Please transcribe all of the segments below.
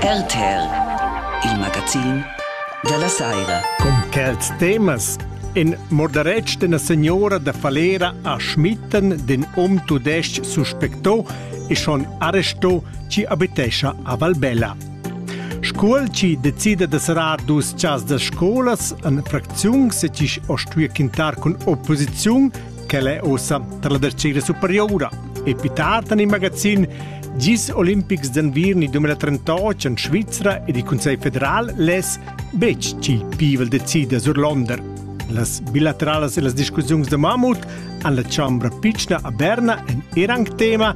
RTR, il magazin dalla saira. Com quels temas in moderetsch d'ena signora da Falera a Schmitten den um tudesc suspecto e schon arresto ci abitescia a Valbella. Scuol ci decida de serar dus chas da scolas an fracziun se ci ostui quintar cun opposiziun Quel è ossa tar la tercera superiora. E più tard en il magazin Gis Olympics d'Anvirni 2038 en Svizra ed il Consiglio federal les betg chi pivel decida sur Londer. Las bilateralas e las discussiuns da mammut han la Chambra Pichna a Berna en er anc tema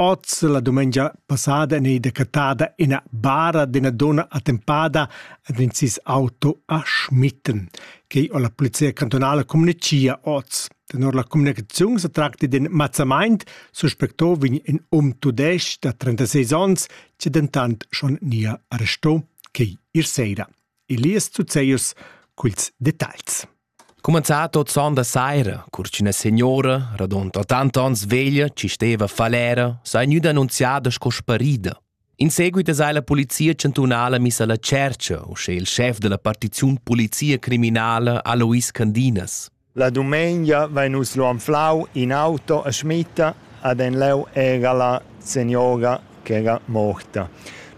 Oz, la dumengia passada, en ei decattada ina bara d'ina dunna attempada ed in sis auto a Schmitten, quei en la polizia cantunala communecia oz. Tenor la communicaziun se tracti d'in mazzamaint, suspectò vegn in um tudesc da 36 onns, che dentant schon nia arrestò quei ir sera. Elias Zuzeus culs detagls. Cumenzà tot son da saira, cur ch'üna signora, radund ottanta ons veglia, chi steva falera, s'ha gnüda annunziada sco sparida. In seguit es eir la polizia chantunala missa alla tschercha, uschè il schef della partiziun polizia criminala Alois Candinas. La dumengia vain nus lu anflau in auto a Schmitta, ad en leu era la signora ch'era morta.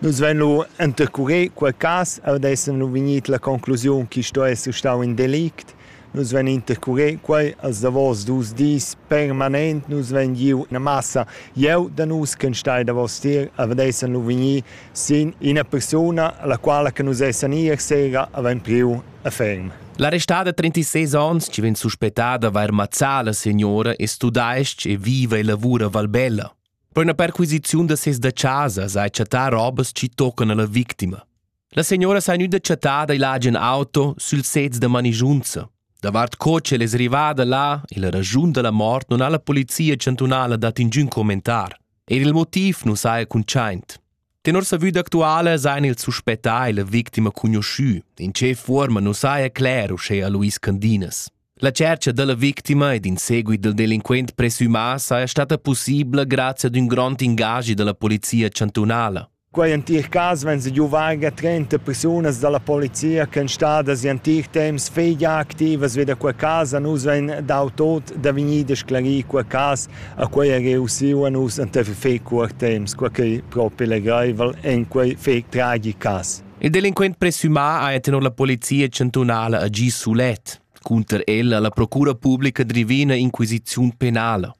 Nus vein lu intercurir quei cass ed essan lu vegnit la conclusiun che sto esser stau in delict. Nus vein intercurir quei als davos dus dis permanent. Nus vein giu ina massa jeu da nus che stai davos tier e vedessan lu vegnir sin ina persuna, alla quala che nus essan ier sera havein priu a ferm. L'arrestada da 36 onns che vegn suspettada vair mazzà la signora e studaesc e viva e lavura a Valbella. Per una perquisiziun da ses da chasa sai chattar robas chi toccan alla victima. La signora s'ha gnüda chattada il agen auto sül sez da manigiunza. Davart co ch'el es rivada là e la ragiun da la mort non ha la polizia chantunala dat ingün commentar. Eir il motiv nu saja cuntschaint. Tenor sa vüda actuala s'hain ils suspettà e la victima cugnuoschü. In che fuorma nu saja cler uschea Luis Candinas. La tschercha da la victima ed in seguit del delinquent presumà saja stata possibla grazia ad ün grond ingagi dalla polizia chantunala. Quei entir cas vegn giuvage 30 persunas dalla polizia che stadas in entir temps feglia activas vi da quei cas, nus vein dau tot da vegnir sclarì quei cas A quei ha jeu usiu a nus enteifer fetg cuort temps, quei ch'ei propi legraivel en quei fetg tragic cass. Il delinquent presumà ha tenor la polizia chantunala agì sulet. Cunter el ha la procura publica drivì ina inquisiziun penala.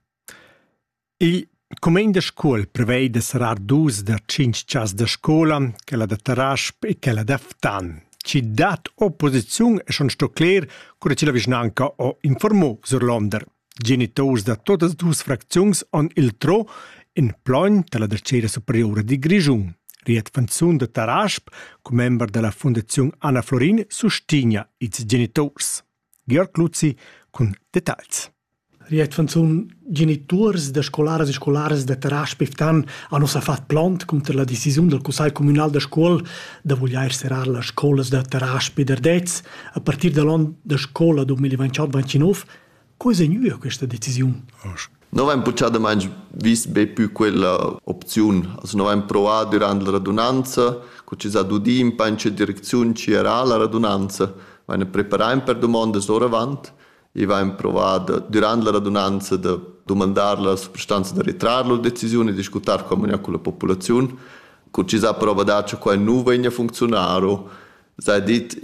Il cumegn da scola prevei da serrar dus da tschintg chas da scola, quella da Tarasp e quella da Ftan. Ci dat opposiziun e schon sto cler, cura ci la vischnanca ho informò sur Londer. Geniturs da tuttas dus fracziuns han il tro in plogn dalla Dretgera superiura dil Grischun. Riet Fanzun da Tarasp, commember dalla Fundaziun Anna Florin, sustigna ils geniturs. Georg Luzzi cun detagls. Riet Fanzun, geniturs da scolaras e scolaras da Tarasp Iftan han ossa fat plont cunter la decisiun del Cussegl communal da scuol da voglier serar las scolas da Tarasp e d'Ardez a partir dall'on da scola 2021-29 Co è vegnida questa decisiun? Noi avain puchadamaing vis be pü quella opziun. As no avain provà dürant la radunanza, co chi s'ha dudi ün pa in che direcziun chi era la radunanza. Vain preparà ün per dumondas oravant e vain provà da, dürant la radunanza da dumandar la suprastanza da retrar lur decisiun e discutar co vegna culla populaziun. Co chi s'ha prova dat cha quai nu vegna funziunaro sei dit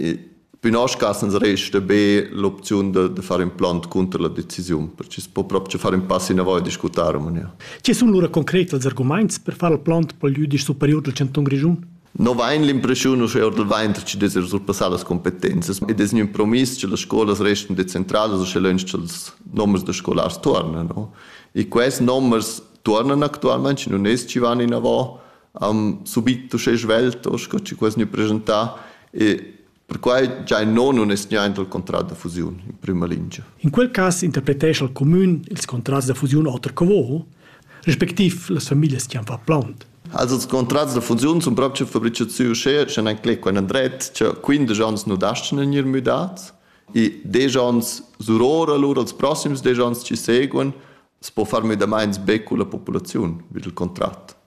Pünascas ans resta be l'opziun da, da far implant cunter la decisiun, perché es po proprio far in pass inavoi e discutar amania. Che sun lura concret els argumaints per far il plant pel jüdisch superior del Canton Grischun? No vain l'impreschiun uschè or del vain che dess ir surpassar las competenzas ed es gnün promiss che las scolas restan decentralas uschè lönch cha'ls nomers da scolars tuornan, no? E quels nomers tuornan actualmaing, nun es chi van inavò am subit uschè svelt o sco chi quas gnü presentà e perquai già in non nun es niaint al contrat da fusiun in prüma lingia. In quel cas interpretescha il cumün ils contrats da fusiun oter co vo, respectiv las familias chi han fat plaunt. Also ils contrats da fusiun sun proprio fabrichats sü uschè, sche nan clé quai nan dret, cha 15 ans nu dastan in ir müdats e 10 ans surora lur als prossims 10 ans chi seguan, s po far müdamaints be culla populaziun, vid il contrat.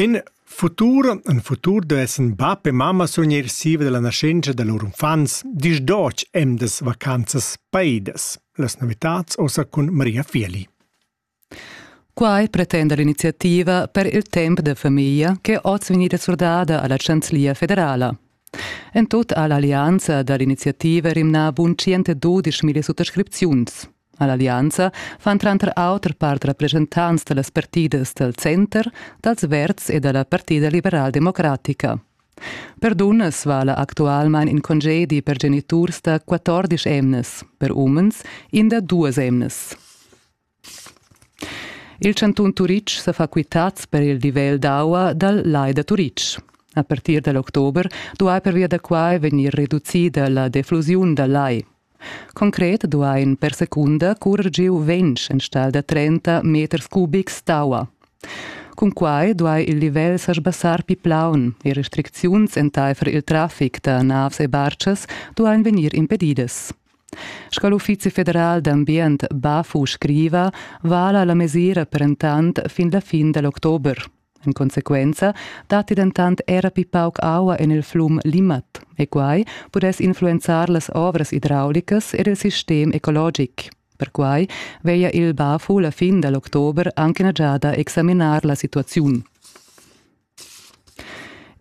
In futur, ün futur duessan bap e mamma surgnir siva dalla nascenza da lur uffants, disch Doc emdas vacanzas paidas. Las novitats ossa cun Maria Fieli. Quai pretenda l'iniziativa per il temp da famiglia ch'è oz vegnida surdada alla Chanzlia federala. En tut ha l'allianza dall'iniziativa rimnà bun 112.000 suttascripziuns. All'allianza fan tranter auter part representants da las partidas dal center, dals Verds e da la Partida liberaldemocratica. Per dunnas vala actualmain in congedi per geniturs da 14 emnas, per umens in da duas emnas. Il chantun Turitg sa fa quitads per il livel d'aua dal Lai da Turitg. A partir dal october duai pervia da quai vegnir reducida la deflusiun dal lai. Concret duain per secunda currer giu ventg enstagl da trenta meters cubics d'aua. Cun quai duai il livel sa sbassar pli plaun e restricziuns entaifer il traffic da navs e bartschas duain vegnir impedidas. Sco l'Uffizi federal d'ambient Bafu scriva, vala la mesira per entant fin la fin da l'october. En consequenza datti dentant era pli pauc aua en il flum Limmat e quai pudess influenzar las ovras idraulicas ed il sistem ecologic. Perquai veglia il BAFU la fin da l'october anche ina giada examinar la situaziun.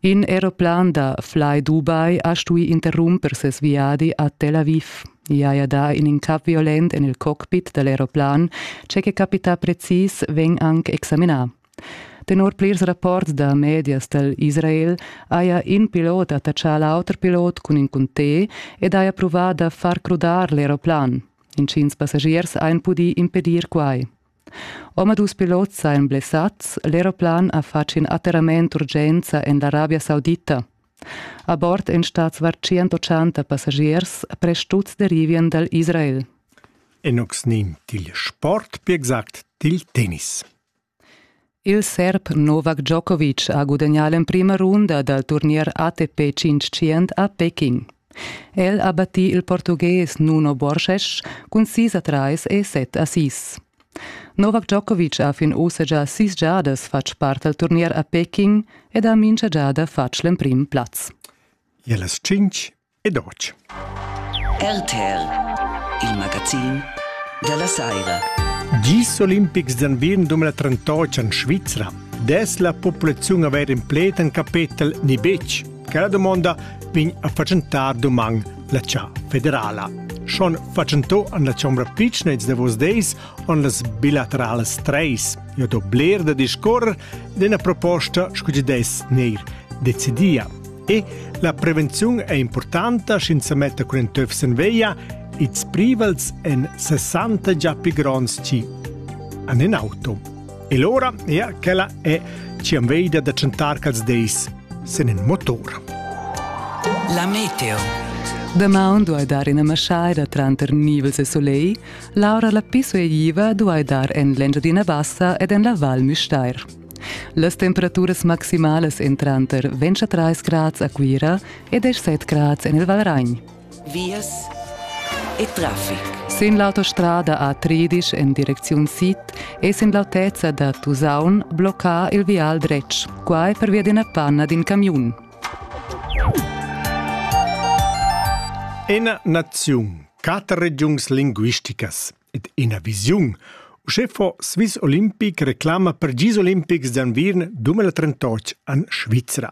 In aeroplan da Fly Dubai ha stuì interrumper ses viadi a Tel Aviv. I haja dà in incap violent en il cockpit da l'aeroplan. Tge che capita precis vegn anc examinà. Tenor plirs rapports da medias dal Israel haja in pilot attachà l'auter pilot cun in cuntè ed haja pruvà da far crudar l'aeroplan. Intgins passagiers hajan pudì impedir quai. Omadus pilots sajan blessads, l'aeroplan ha fatg in atterrament d'urgenza en l'Arabia Saudita. A bord èn stads var 180 passagiers, presch tuts derivien dal Israel. Enox nimt il sport, per exact dil tennis. Il serb Novak Djokovic ha gudagnà l'emprima runda dal turnier ATP 500 a Peking. El ha battì il Portughes Nuno Borges cun sis a trais e set assist. Novak Djokovic ha fin ussa già sis giadas fatg part al turnier a Peking ed ha mincha giada fatg l'emprim plaz. E las cinc ed otg. RTL, il magazin della saira. Gis olimpics d'anvien 2038 en Svizra. Des la populazione aver in pled en capetel ni betg? Che la domanda vegn a facentar doman la cia federala. Schon facento an la Chombra Pitchnets de vos deis on las bilaterales treis. Jo do bler da discorrer d'ena proposta scu des neir decidia. La prevenziun è importanta sch'ins sa metta cun in töf sin veglia, ils privels en 60 già più gronds ci an in auto. E l'ora è quella è ci am veida da chantar cals deis sin in motor. La meteo. Damaun duai dar ina maschaida tranter nivels e soleil, l'aura la pisu e iva duai dar en l'Engiadina Bassa ed en la Val Müstair. Las temperaturas maximalas èn tranter 23 grads a Cuira e 17 grads en il Valragn. Vias e traffic. Sin l'autostrada A30 en direcziun sid è sin l'autezza da Tusaun bloccà il vial dretg, quai pervia d'ina panna d'in camiun. Ena naziun, quatter regiuns linguisticas. ed ina visiun. Uschè fo Swiss Olympic reclama per gis olimpics d'anviern 2038 an Svizra.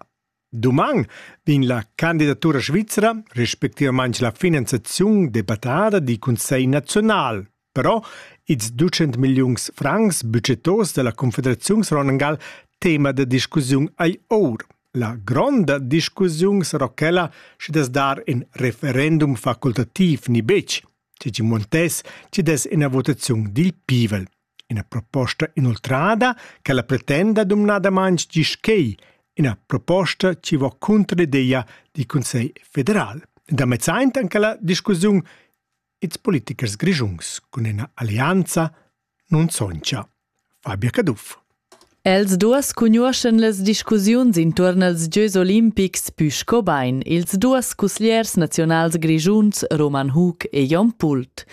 Doman vegn la candidatura svizra, respectivament la finanziazione debattata di Consiglio nazionale. Però ils 200 milions francs budgetos della Confederazione Ronan Gall tema de discussione ai or. La gronda discussione sarà quella se das dar in referendum facultativ ni bec. Tgi Montès ci dess ina votaziun dil pivel. Ina proposta inoltrada che la pretenda dumnadamain gischei, ina proposta ci va cunter l'ideia di Consell federal. Da mezzaint anche la discussiun ils politichers grischuns cun ina allianza nun soncha. Fabia Caduff. Els duas cugnuoschan las discussiuns intuorn als gieus olimpics pü sco bain ils duos cusgliers naziunals grischuns Roman Hug e Jon Pult.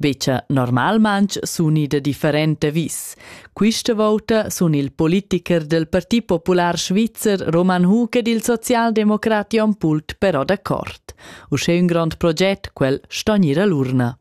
Becha normalmanch suni da differente vis. Quista vouta sun il politiker del Parti Popular Svizzer Roman Hug ed il socialdemocrat Jon Pult però d'accord. Uschè ün grand proget quel sto gnir a l'urna.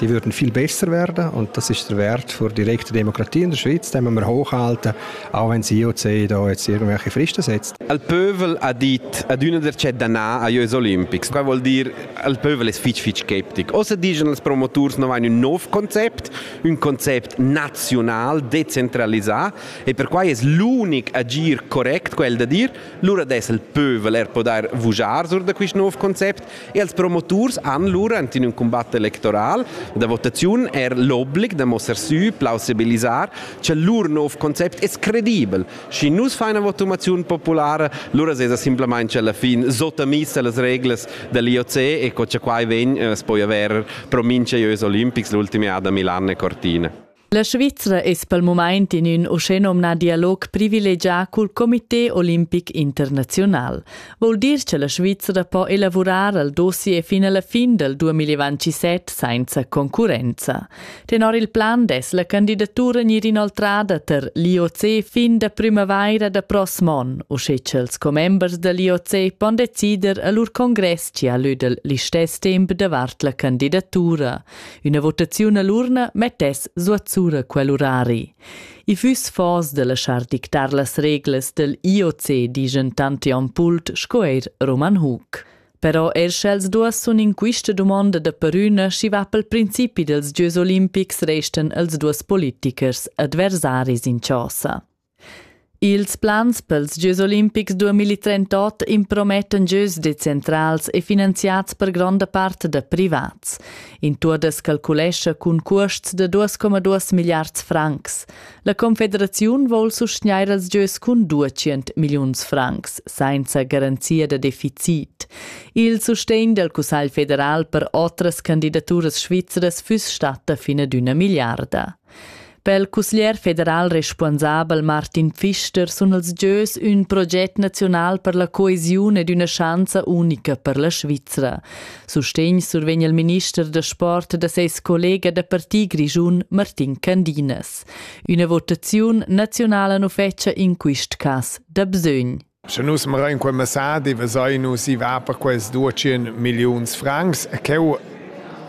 die würden viel besser werden und das ist der Wert für direkte Demokratie in der Schweiz, den wir hochhalten, auch wenn die IOC da jetzt irgendwelche Fristen setzt. Il peuvel ha dit ad una der cittadini agli Olimpics, qua vuol dire il peuvel ist fitch fitch skeptic. O se dicono als promotors non hanno un nuovo concept, un concept nazional, decentralizzato e per cui è l'unico agir correct quel da dire, lura des il peuvel er può dar vugiar sur da questo nuovo concept Els promoturs han lura ent in ün combatt electoral da votaziun er l'oblig da mosser sü, plausibilisar, che lur nov concept es credibel. Schi nus fain una votumaziun populara, lura sesa simplamain alla fin sotamis a las reglas dell'IOC e co cha quai vegn, eh, es poi avair promincha ieus olimpics l'ultimi ad a Milan e Cortina. La Svizra es pel mumaint in ün uschènomnà dialog privilegià cul Comité olimpic internaziunal. Voul dir cha la Svizra po elavurar il dossier fin alla fin del 2027 sainza concurrenza. Tenor il plan dess la candidatura gnir inoltrada ter l'IOC fin da primavaira da prossm on, uschè cha'ls commembers da l'IOC pon decider a lur congress chi ha lö del listess temp davart la candidatura. Üna votaziun all'urna mettess suatsura quel urari. I füss fors de laschar dictar las reglas del IOC, digen tanti Ampult sco eir Roman Hug. Però er sch'els duas sun in quista dumonda da perüna schi va pel principi dels Gieus olimpics resten els duas politichers adversaris in chosa. Ils plans pels gieus olimpics 2038 impromettan gieus decentrals e finanziats per gronda part da privats. In tour das calculescha cun cuosts da 2,2 milliards francs. La Confederaziun vol sustgnair als gieus cun 200 milliuns francs, senza garanzia da deficit. Il sustegn dal Cussagl federal per otras candidaturas svizras füss statta fin ad üna milliarda. Per il cusglier federal responsabel Martin Pfister sun els gieus ün proget naziunal per la coesiun ed üna schanza unica per la Svizra. Sustegn survegn il minister da sport da seis collega da parti grischun Martin Candinas. Üna votaziun naziunala nu fetscha in quist cas da bsögn. Sche nus marein quei messadi vesein nus i va per quels duatschien milliuns francs e cheu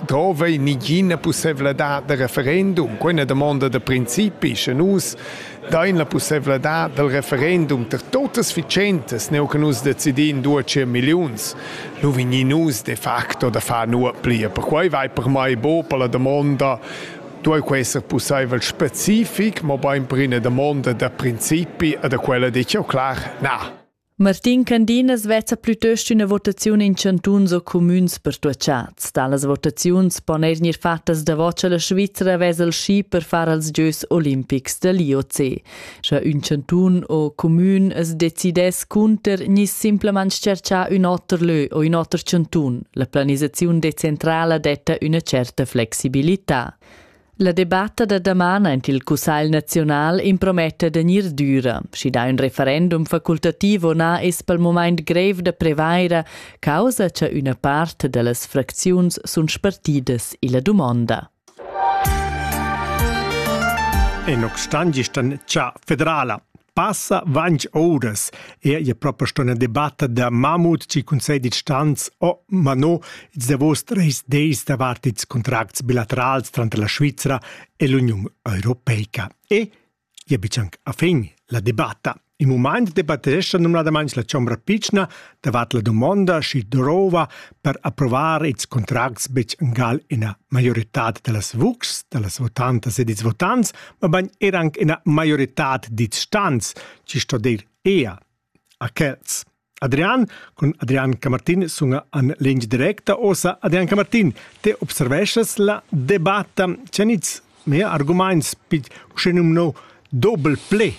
drove nigina pussevladad da referendum. Quei è una domanda da principi, sche nus dain la pussevladad del referendum ter totas ficentes, neu che nus decidin duatschien milliuns, nu vegni nus de facto da far nuot plia. Perquei vai per mai bo per la domanda duei quei esser pusseivel specific, mobein per ina damonda da principi e da quella detg jau clar na. Martin Candinas vezza plütöst üna votaziun in chantuns o cumüns pertuachats. Talas votaziuns pon eir gnir fattas davot cha la Svizra vezza il schi per far als gieus olimpics da l'IOC. Sche ün chantun o cumün as decidess cunter gnisse simplamaing tscherchar ün oter lö o ün oter chantun, la planisaziun decentrala detta üna certa flexibilità. La debatta da daman aint il Cussagl naziunal imprometta da gnir düra. Schi dà ün referendum facultativo na es pel momaint grev da prevair, causa cha üna part da las fracziuns sun spartidas illa dumonda. En Oxtangistan cha federala passa vanch ouras er ia propa sto na debatta da Mamut ci Cunsegl dils stans o ma no ils davos treis deis davart ils contracts bilaterals tranter la Svizzera e l'Uniun Europeica. E Gia bitg anc a fin la debatta. In mumaint debattescha numnadamain la chombra pitschna davart la dumonda, schi drova per approvar ils contracts betg angal ina maioritad da las vuxs, da las votantas ed ils votants, mabain er anc ina maioritad d'its stans, ci sto dir ea a quels. Adrian cun Adrian Camartin sunga an lingia directa. Osa, Adrian Camartin, te observeschas la debatta ceniz mea argumaints pit uschenum no doble ple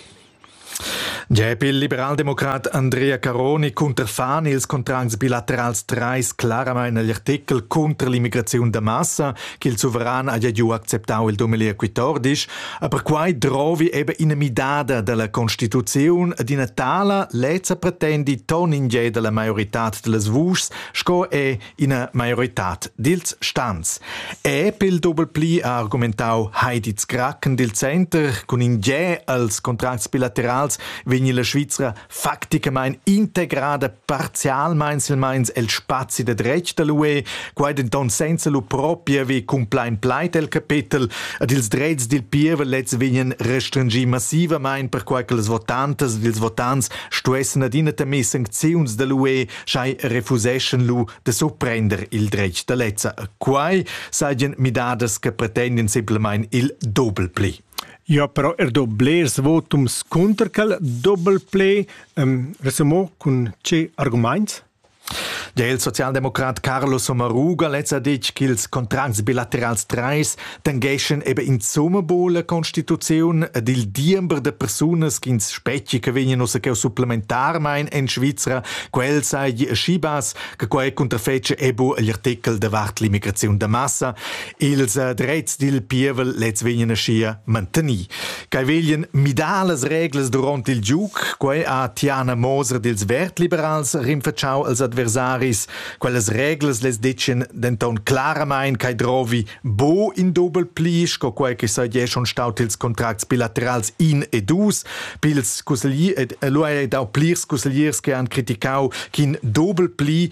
Gep il liberaldemocrat Andrea Caroni cunterfan ils contracts bilaterals trais claramain agl artikel cunter l'immigraziun da massa ch'il suveran haja giu acceptau il domeli equitordisch Aber quai drovi eben ina midada della constituziun ed ina tala lezza pretendi ton in ge della maioritad dellas vuschs sco è ina maioritad dils stans. E pel doppel pli ha argumentau Heidi Zkraken dil Center cun in ge als contracts bilaterals vegni la Svizzera facticamain integrada parzialmain silmeins el spazi de dretg de l'UE, quai denton senza lu propria vi cumplain plait el capetel, ed ils drets dil pievel lez vegnan restringì massivamain perquai che les votantas ed ils votants stuessen adina temer sancziuns de l'UE, schai refuseschen lu de surprender il dretg de lezza. Quai sajan midadas che pretenden simplamain il doble pli. Eu ha però er do blers votums cunter quel dobel pled, resumo cun tge argumaints? Der il Sozialdemokrat Carlo Sommaruga lez ha detg ch'ils contracts bilaterals trais tangheschan eben insomma bo la constituziun ed il diember da persunas ch'ins spetgi che vegnan ussa cheu supplementarmain en Svizra, quel sai schi bass che quai cunterfetge ebo agl artikel davart l'immigraziun da massa. Ils äh, drets dil pievel lez vegnan aschia mantenì. Quei veglien midar las reglas duront il giug, quei ha Tiana Moser dils Vertliberals rinfacciau als adversaris. Quellas reglas les decien denton claramain ch'ei drovi bo in dobel pli sco quei che saie schon staut ils contracts bilaterals in e dus, pils cusseglier ed lu ei dau plirs cussegliers che han criticau ch'in dobel pli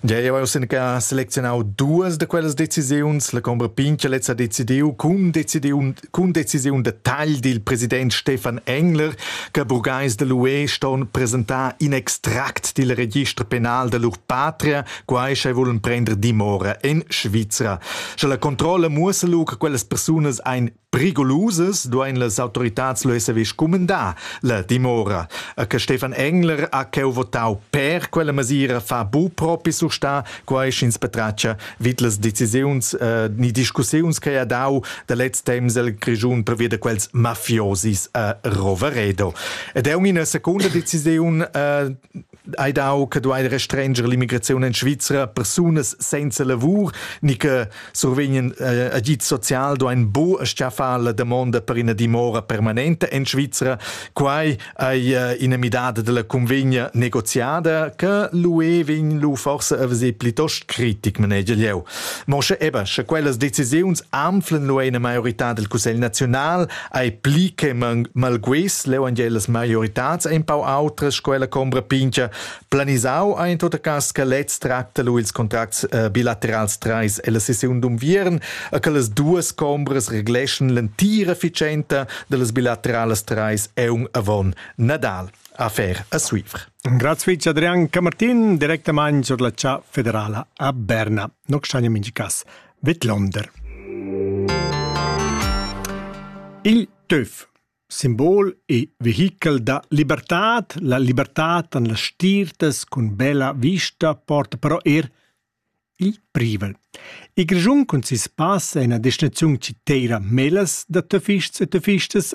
Gia jau hai uss sinca selecziunau duas da quellas decisiuns. La combra Pincher lezza decidiu cun decisiun, cun decisiun da tagl dil president Stefan Engler che burgais de l'UE ston presentar in extract dil register penal da lur patria, quai sch'ei vulen prender dimora en Svizra. Sche la controlla muossa lu che quellas persunas ein Prigolusas duein las autoritads lu esser scumendar la dimora. E che Stefan Engler ha cheu votau per quella mesira fa bu propi surstar quei sch'ins patratga vid las decisiuns eh, ni discussiuns che ha dau da lez temps el Grischun provia da quels mafiosis a Roveredo. Ed è una seconda decisiun eh, Hai dau che duai restranger l'immigraziun en Svizra persunas senza lavur ni che survegnan eh, agid social duain bu schaffar la damonda per ina dimora permanenta en Svizra. Quai è eh, ina midada della convegna negoziada che l'UE vegn lu forse a vesir plitost critic, manegia leu. Moshe Eber, sche quellas decisiuns anflen l'UE una maiorità del Cussegl nazional, ei pli che malguess leu las maioritads empau outras sco la combra pincha planisau ein tot cas che lez tracta lu ils contracts eh, bilaterals treis e la sessiun d'unviern e che las duas combras regleschen l'entira efficienta dellas bilateralas treis eun avon Nadal affair a Suivre. Grazie Vice Adrian Camartin, direttamente sur la città federale a Berna. Non stagno mingi cas. Vedlonder. Il töf, simbol e vehichel da libertad, la libertad an las stirtas cun bella vista porta però er il privel. Il Grischun cun sis pass è ina destinaziun citeira melas da töfists e töfistas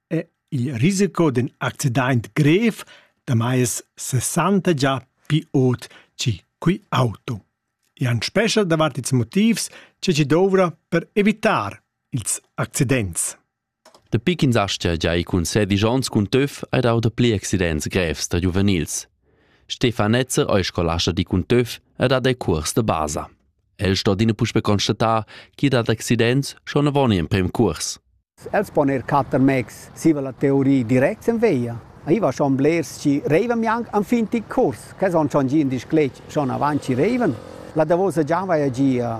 è il risico d'ün accidaint grev damai es sessanta gia pü ot chi qu'iauto. I han spescha davart ils motivs cha chi douvra per evitar ils accidents. Dapi ch'ins astga gia ir cun sedisch onns cun töf hai dau dapli accidents grevs da giuvenils. Stefan Netzer ei scolascha di cun töf ed ha dei curs de basa. El sto adina puspe constatar chi dat accidents schon avon in prem curs. Els pon eir catter mezs zieva la teoria direct sen via. I va schon blers chi reivan mianc enfin til curs, che son schon gia in disclet schon avant chi reivan. La davosa già vaja gia